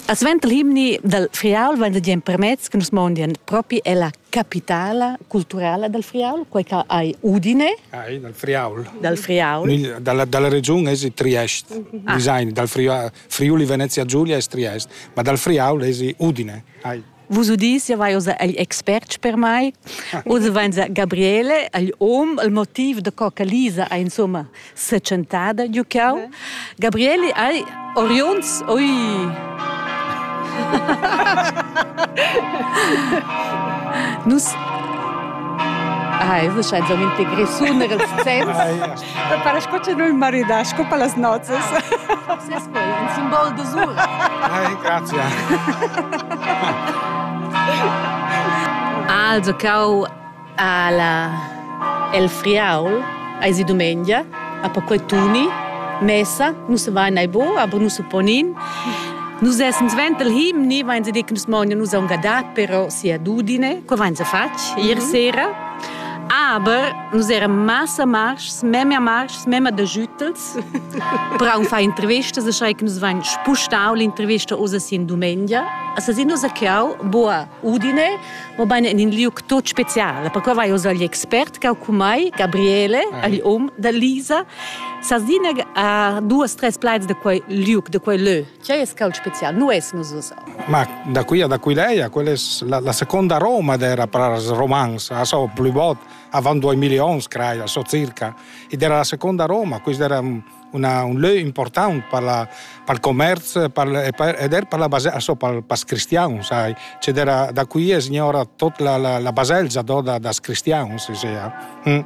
A suenter l'himni dal Friaul vain da dir empermez che nus mondien propi è la capitala culturala dal Friaul, quai che hai Udine. Ai, dal Friaul. Dal Friaul. Dalla, dalla regiun es i Triest. Ah. Design, dal Friaul, Friuli Venezia Giulia es Triest, ma dal Friaul es i Udine. Ai. Vus udis, ja vai oza agl expert per mai. Oza vain Gabriele, agl om, il motiv da co che Lisa ha insomma setschentada giu cau. Gabriele hai Orions, oi! Nus Ai, das scheint so ein Integration ihres Zens. Para sco ce nu maridà, sco per las nozzas. Sì, poi un simbol d'usur. Ai, grazie. Also cau alla el friaul eisi dumengia a perquei tuni messa nus va nei bo aber nus supponin Nus essens ventel him ni vain se dic nus mogna nus aunc adat però sia dudine, co vain se fatg ier mhm. sera aber Nus eran massa marschs, memia marschs, memia da schüttels. Però un fa intervista, se schrei che nus vain spustau l'intervista usa sin dumengia. Asa sin nus chiau boa Udine, ma baine in in liuc tot speciale, perché vai usa gli expert cau cu mai, Gabriele, agli om da Lisa. Sa zineg a duas tres plaids da quei liuc, da quei lö. Che es cau special, nu es nus usa. Ma da qui a da qui lei, quella es la, la seconda Roma dera pras romans, aso plü bot. avant duemila onns crai a so circa ed era la seconda Roma questo era un, una, un lieu important per la, per il commercio ed era per la baselgia so, per, per cristiani sai c'è era da qui è signora tutta la, la, la baselgia do da, das cristiani si sia mm.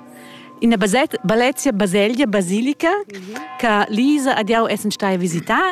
Ina baselgia baselgia basilica che Lisa adiau essen stai a visitar